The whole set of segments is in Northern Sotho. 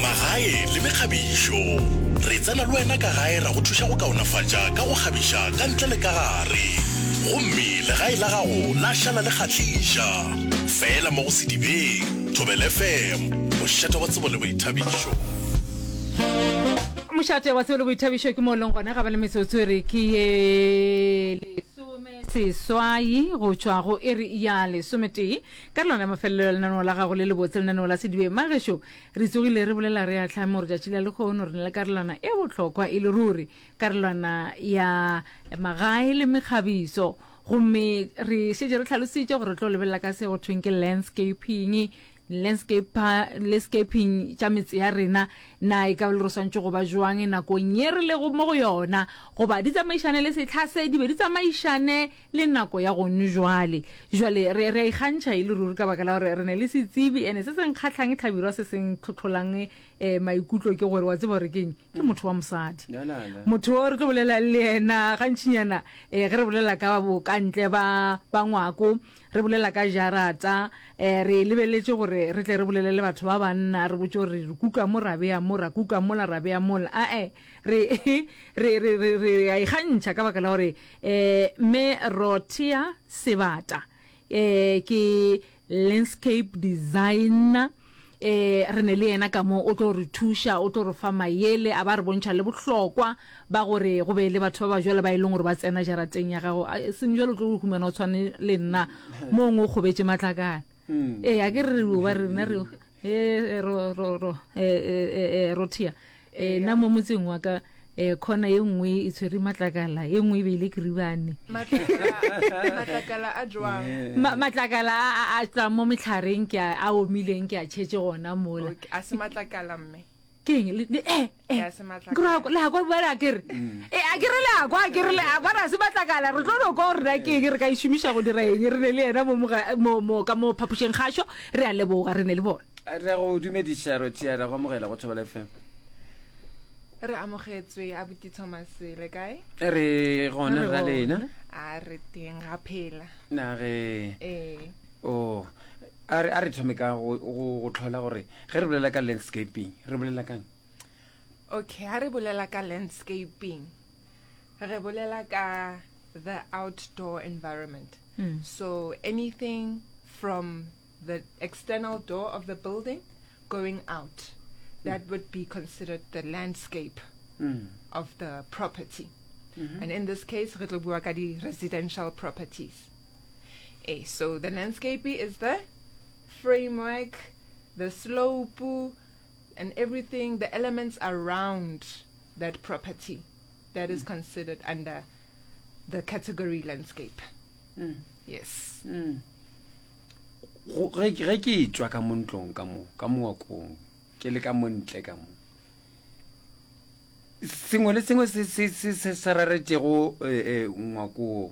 Magae le mekgabišo. Re tsena le wena ka gae ra go thuša go kaonafatša ka go kgabiša ka ntle le ka gare. Gomme legae la gago la šala le kgahliša. Fela mo go Sedibeng, Thobela FM, mošate wa tsebo le boithabišo. Mošate wa tsebo le boithabišo ke mo leng gona ga ba le metsotso e re ke ye lesome seswai go tšwa go e re ya lesometee. Ka lona mafelelo ya lenaneo la gago le lebotse, lenaneo la Sedibe, Magešo, re tsogile re bolela re a tlhamo gore tšatši la lekgono re na le karolwana e bohlokwa e le ruri, karolwana ya magae le mekgabiso. Gomme re šetše re tlhalositše gore re tlo lebelela ka se go thweng ke landscaping, landscaping tša metse ya rena, na e ka ba le re swantšwe go ba jwang nakong ye re lego mo go yona, goba di tsamaišane le sehla se, di be di tsamaišane Le nako ya gonu jwale. Jwale, re, re a ikgantšha e le ruri ka baka la gore re ne le setsebi, ene se se nkgahlang hlabirwa se se ntlhotlholang eh, maikutlo ke gore, wa tseba gore ke'ng? Ke motho wa mosadi. Na, na, na. Motho o re tlo bolelang le yena gantšinyana eh, ge re bolela ka bokantle ba, ba ngwako, re bolela ka jarata, eh, re lebeletše gore re tle re bolele le batho ba banna, re botše gore re kuka mo ra bea mo, ra kuka mola ra bea mola. Ae, re, re, re, re, re a ikgantšha ka baka la gore E, me Rothea Sebata e, ke landscape designer e, re ne le yena ka mo o tlo re thuša o tlo re fa mayele a ba re bontšha le bohlokwa ba gore go be le batho ba ba jwale ba e leng gore ba tsena jarateng ya gago seng jwale o tlo humana o tshwane le nna mong o kgobetše matlakana ee a ke re re ba rena re e ro ro ro e e ro thia e na mo motseng wa ka e khona e nngwe e tshwere matlakala e nngwe e beile keribane matlakala a jwang Ma- matlakala a- a a tswang mo metlhareng ke a a omileng ke a tšhetse gona mola a se matlakala mme ke eng le le- eh, eh. Ya se matlakala. Ke ra- le a kwa bjale a kere e a kere le a kwa a kere le a kwa ra se matlakala re tlo no kwa gore na ke eng re ka e šomiša go dira eng re ne le yena mo moga- mo- mo- ka mo phapošeng gašo re a leboga re ne le bona re a go dumediša rotia ra go amogela go thobela fm re amogetswe a buti thomas le kae re gona Re ra gona. lena a re teng ga phela nage ee Oo, a re, a re thome ka go, go, go tlhola gore ge re bolela ka landscaping, re bolela kang? Okay, ha re bolela ka landscaping, re bolela ka the outdoor environment. Hmm. So anything from the external door of the building going out, that hmm. would be considered the landscape hmm. of the property. Mm-hmm. And in this case, re tlo bua ka di residential properties. Hey, so the landscape is the framework, the slope, and everything, the elements around that property that is mm. considered under the category landscape. Mm. Yes. Mm. ge ke tswa ka mo ntlong ka mo ka moakong ke le ka mo ntle ka mo sengwe le sengwe se se se se raretšego eh, eh, ngwakoo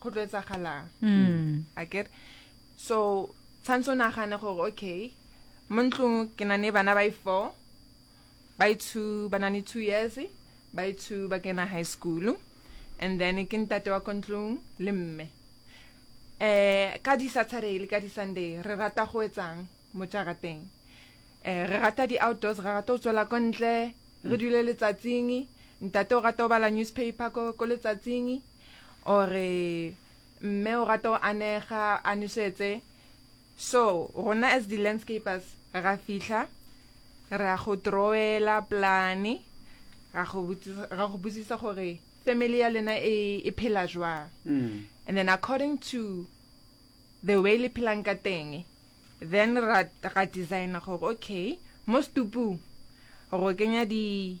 go tlo etsagalang mm. a kere so tshwanetse o nagane gore okay mo ntlong ke na ne bana ba i-four ba i-two ba na ne two years ba i-two ba kena high school and then ke ntate wa ko ntlong le mme um ka di-saturday le ka di-sunday re rata go etsang mo jarateng um re rata di-outdoors re rata go tswela ko ntle re dule letsatsing ntate o rata go bala newspaper ko letsatsing Ore, Mme o rata go anega, a nosetse. So, rona as di landscapers, ra fihla, ra go drawela plane, ra go botsisa, ra go botsisa gore family ya lena e, e phela jwang. Mm. And then according to the way le phelang ka teng, then ra, ra designer gore okay, mo stupung, ro kenya di,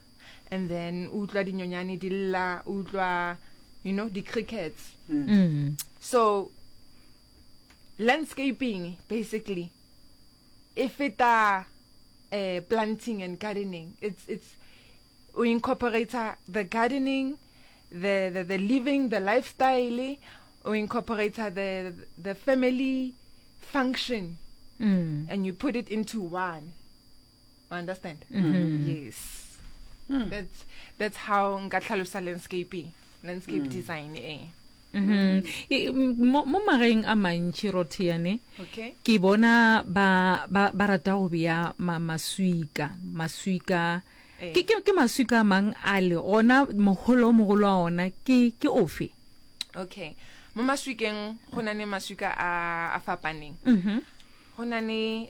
and then o utlwa dinyonyane di lla o utlwa you know di-crickets mm. Mm. so landscaping basically e feta uh, planting and gardening it's it's o incorporator the gardening the, the the living the lifestyle o incorporator the the family function mm. and you put it into one understand mm -hmm. yes mm. that's that's how nka tlhalosa landscaping landscape mm. design eh Mm-hmm. mo mageng a mantši rotheane ke bona ba rata go beya maswika maswika eh. ke maswika a mang a le gona mogolo o mogolo wa ona ke ofe okay mo maswikeng go na le maswika a fapaneng mm-hmm. go na le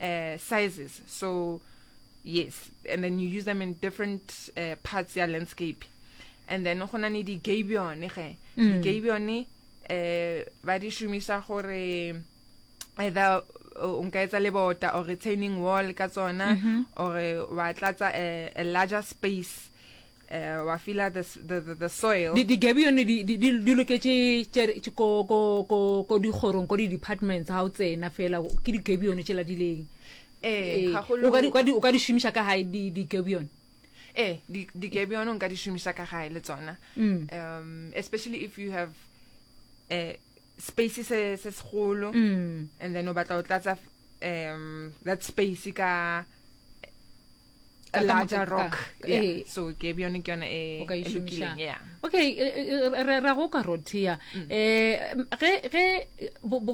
uh, sizes so yes and then you use them in different uh, parts ya landscape and then go na ne di-gabione ge mm. di-gabione um ba di šomisa gore either o nka etsa lebota or retaining wall ka tsona mm-hmm. or wa tlatsa a larger space uh, wa fila the, the, the, the soil di, di gabi yone di, di, di, di loketše ko, ko, ko, ko dikgorong ko di-departments ga o tsena fela ke di gabi yone tšela di leng eh, eh, o ka di šomiša ka gae di gabi yone eh di di ke bjone nka di shumisa ka gae le tsona mm. um especially if you have eh space se se segolo mm. and then o batla o tlatsa um that space ka a larger rock yeah. Eh. so ke bjone ke yone e lokileng yeah okay re ra go ka rothia mm. eh ge ge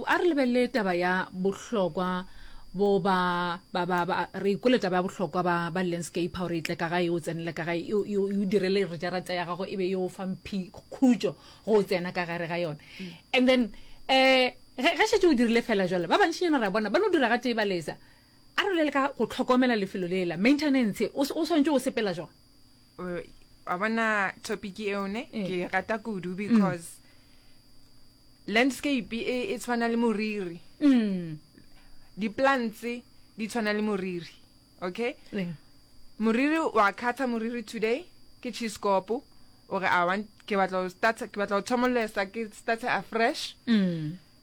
a re lebelele taba ya bohlokwa bo ba ba ba ba re ikole taba ya bohlokwa ba ba landscape ha re itle ka ga e o tsenele ka ga e o direle re ja rata ya gago e be yo e fa mphi khujo go tsena ka gare ga yone mm. and then eh ge shetse o dirile fela jwale ba bantsi yana ra bona ba no dira ga tee ba lesa A re bolele ka go hlokomela lefelo lela, maintenance. O, o swanetše go sepela jwang? Wa bona topic eo ne Eh. ke e rata kudu because landscape e e tshwana le moriri. Mm. Di-plants di tshwana le moriri. Okay? Eh. Moriri wa khatha moriri today ke cheese kopo o re I want ke batla ho start ke batla ho thomolesa ke start afresh. Mm.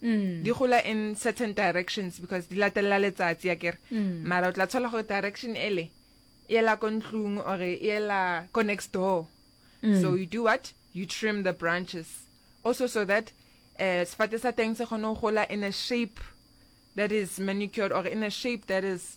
di gola in certain directions because di latelela letsatsi ya kere mara o tla tshola gore direction ele e ela ko ntlong or e ela ko next door so you do what you trim the branches also so that um sefate sa teng se kgone go gola in a shape that is manicured or in a shape that is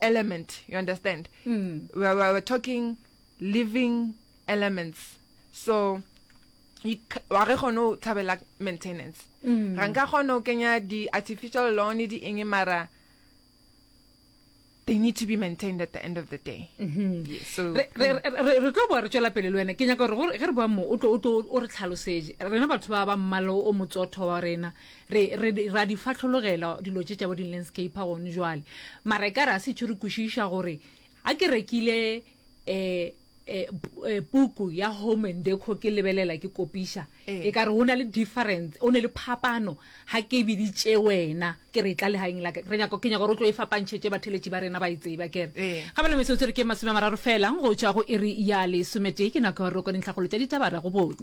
element you understand mm. we're, we're, we're talking living elements so wa ge kgone o tshabela maintenance mm. ga nka kgone o kenya di-artificial lawn di eng mara they need to be maintained at the end of the day mm-hmm. mm. re tlo boa re tswela pele le wena ke nyaka gore ge re boa mo o re tlhalosetse rena batho ba ba mmalo o motsotho wa rena Re, re, ra di fahlologela dilo tše tša bo di-landscaper gone jwale. Mara e ka re a se tšho re kwešiša gore ga ke rekile eh, eh, pu- eh, puku ya home and deco ke lebelela ke kopiša Ee. e ka re go na le difference o ne le phapano ga ke biditše wena ke re e tla legaeng la ka re nyako ke nyako gore o tlo e fapantšhetše batheletši ba rena ba e tseba kere Ee. ga bana metsotso re ke masome a mararo fela go tšwa go iri ya lesometee ke nako ya gore o kwane ntlhakgolo tša ditaba ra go bone